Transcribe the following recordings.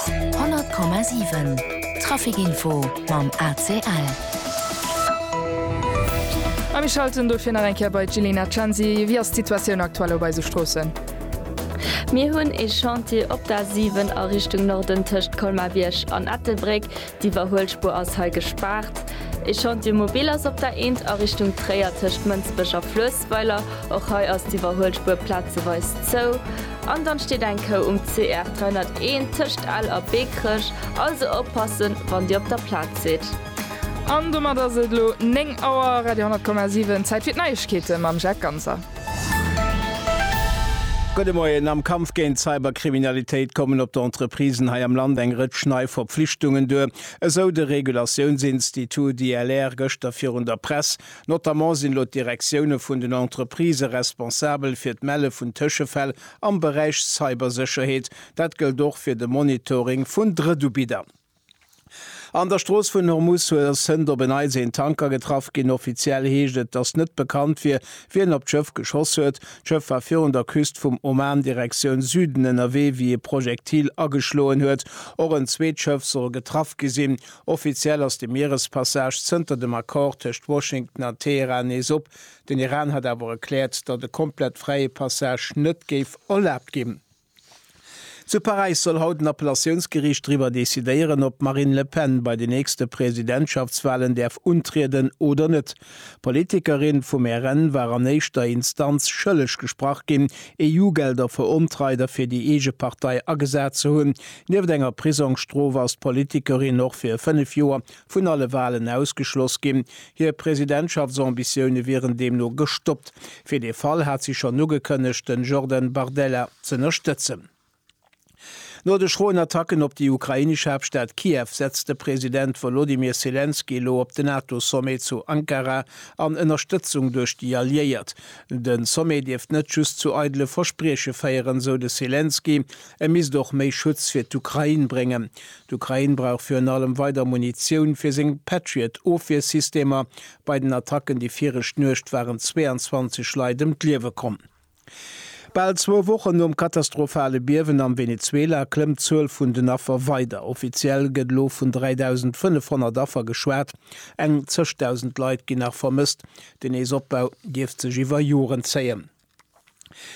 100,7 Traficinfo mam ACL. A mir schalten dofir nach eng Kéier bei d'Jilena Censi. Wéi ass d'Situatioun aktuell op eise Stroossen? Mir hunn ee Chantier op der A7 a Richtung Norden tëscht Colmar-Bierg an Ettelbréck. D'Iwwerhuelspur ass hei gespaart. E Chantier mobile ass op der Eent a Richtung Tréier tëscht Mënsbech a Fluessweiler. Och hei ass d'Iwwerhuelspur plazeweis zou. An dann steet eng Kou um CR 301 tëscht Ell a Bekerech. Also oppassen, wann Dir op der Plaz sidd. An domat ass et elo 9 Auer. Radio 10,7, Zäit fir d'Neiegkeete mam Jacques Ganser. Gudde Moien. Am Kampf géint d'Cyberkriminalitéit kommen op d'Entreprisen hei am Land eng Rëtsch nei Verpflichtungen duer, esou de Regulatiounsinstitut ILR gëschter virun der Press. Notamment sinn elo d'Direktioune vun den Entreprisë responsabel fir d'Melle vun Tëschefäll am Beräich Cybersécherheet. Dat gëllt och fir de Monitoring vun Drëttubiddern. An der Strooss vun Hormuz sënnt op en Neits een Tanker getraff ginn. Offiziell heescht et, datt net bekannt wier, wien op d'Schëff geschoss huet. D'Schëff war virun der Küst vum Oman Direktioun Süden ënnerwee, wéi e Projektil ageschloen huet. Och en zweet Schëff soll getraff gi sinn. Offiziell ass de Mierespassage zënter dem Accord tëscht Washington an Teheran nees op. Den Iran hat awer erkläert, datt e komplett fräie Passage net géif erlaabt ginn. Zu Paräis soll haut en Appellatiounsgeriicht driwwer decidéieren, ob d'Marine Le Pen bei den nächste Presidentschaftswalen däerf untrieden oder net. D'Politikerin vum RN war an éischter Instanz schëlleg gesprach ginn, EU-Gelder verontreit a fir déi eege Partei agesat ze hunn. Nieft enger Prisongsstrof ass d'Politikerin och fir fënnef Joer vun alle Walen ausgeschloss ginn. Hir Presidentschaftsambitionen wieren deemno gestoppt. Fir dee Fall hat si schonn ugekënnegt, den Jordan Bardella z'ënnerstëtzen. No de schroen Attacken op déi ukrainesch Haaptstad Kiew setzt de President Wolodymyr Selenskyj elo op de NATO-Sommet zu Ankara an Ënnerstëtzung duerch déi Alliéiert. Den Sommet dierft net just zu eidele Versprieche féieren, sou de Selenskyj. E misst och méi Schutz fir d'Ukrain bréngen. D'Ukrain brauch virun allem weider Munitioun fir seng Patriot-Ofwiersystemer. Bei den Attacken déi viregt Nuecht waren 22 Leit ëm d'Liewe komm. Bal zwou Wochen nom katastrophale Biewen am Venezuela klëmmt d'Zuel vun den Affer weider. Offiziell gëtt elo vun 3.500 Affer geschwat. Eng zëschdausend Leit ginn nach vermësst. Den Nees-Opbau dierft sech iwwer Joren zéien.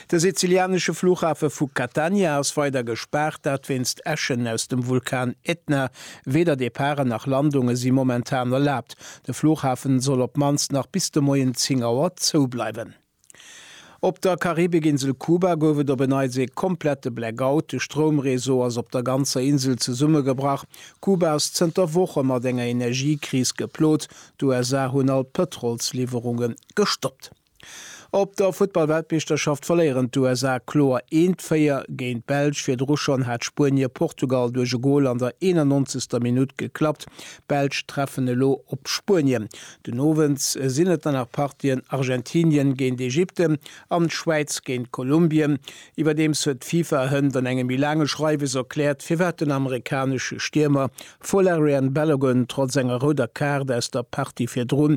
De sizilianesche Flughafe vu Catania ass weider gespaart, dat wéinst Äschen aus dem Vulkan Etna. Weder Departen nach Landunge si momentan erlaabt. De Flughafe soll op d'mannst nach bis de Moien 10 Auer zou bleiwen. Op der Karibikinsel Kuba gouf et op en Neits ee komplette Blackout. De Stroumreseau ass op der ganzer Insel zesummegebrach. Kuba ass zënter Woche mat enger Energiekris geplot. D'USA hunn all d'Pëtrolsliwwerunge gestoppt. Op der Futtballweltmeeschterschaft verléieren d'USA kloer eent 4 géint d'Belsch. Virdru schonn hat Spuenie Portugal duerch e Gol an der 91. Minutt geklappt. D'Belsch treffen elo op Spuenien. Den Owend sinn et dann nach Partien, Argentinien géint Ägypten an d'Schwäiz géint Kolumbien. Iwwerdeems huet d'FIFA hënt an engem méi laange Schreiwes erkläert, firwat den amerikanesche Stiermer Folarin Balogun trotz enger rouder Kaart aus der Partie virdrun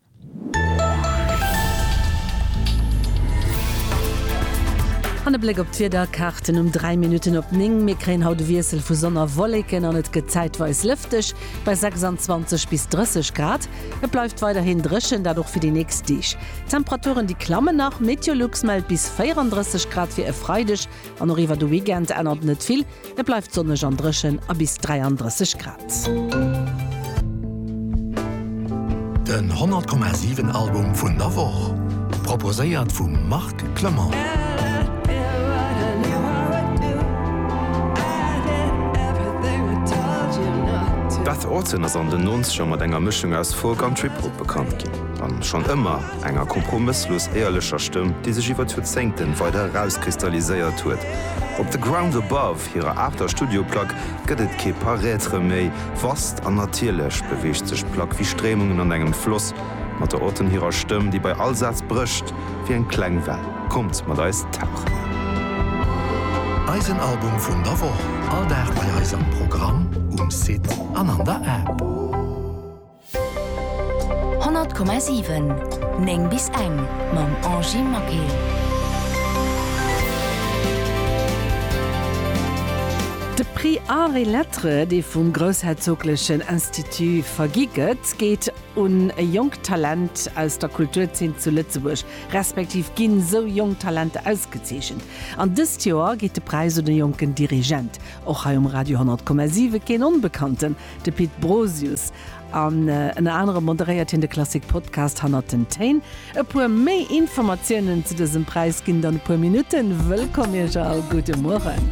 An e Bléck op d'Wiederkaarten um 3 Minutten op 9. Mir kréien haut e Wiessel vu Sonn a Wolleken an et gëtt zäitweis lëfteg bei 26 bis 30 Grad. Et bleift weiderhin dréchen, dat och fir déi nächst Deeg. D'Temperaturen déi klammen nach, Meteolux mellt bis 34 Grad fir e Freideg. An och iwwer de Weekend ännert net vill, et bleift sonneg an dréchen a bis 33 Grad. Den 100,7 Album vun der Woch proposéiert vum Marc Clement. Beth Orton ass an den Nonzeger mat enger Mëschung aus Folk an Trip-Hop bekannt ginn, an schonn ëmmer. Enger kompromësslos éierlecher Stëmm, déi sech iwwer d'Joerzéngten weider erauskristalliséiert huet. Op The Ground Above, hirer aachter Studioplack, gëtt et kee Paraître méi. Vast an natierlech beweegt sech d'Plack wéi Stréimungen an engem Floss, mat der Auton hirer Stëmm, déi bei all Saz brécht wéi eng kleng Well. Kommt mat eis tauchen! Eisen Album vun der Woch, all Dag bei eis am Programm, um Site an an der App. 100,7 9 bis eng mam Angie Maquet. De Prix Arts et Lettres, dee vum Groussherzoglechen Institut vergi gëtt, geet un e jonkt Talent aus der Kulturzeen zu Lëtzebuerg, respektiv ginn esou jonk Talenter ausgezeechent. An dëst Joer geet de Präis un e jonken Dirigent, och hei um Radio 100,7 keen Onbekannten, De Pit Brosius, an ënner anerem moderéiert hien de Klassik-Podcast Hannert den Téin. E puer méi Informatiounen zu dësem Präis ginn dann e puer Minutten. Wëllkomm Iech all, gudde Mueren.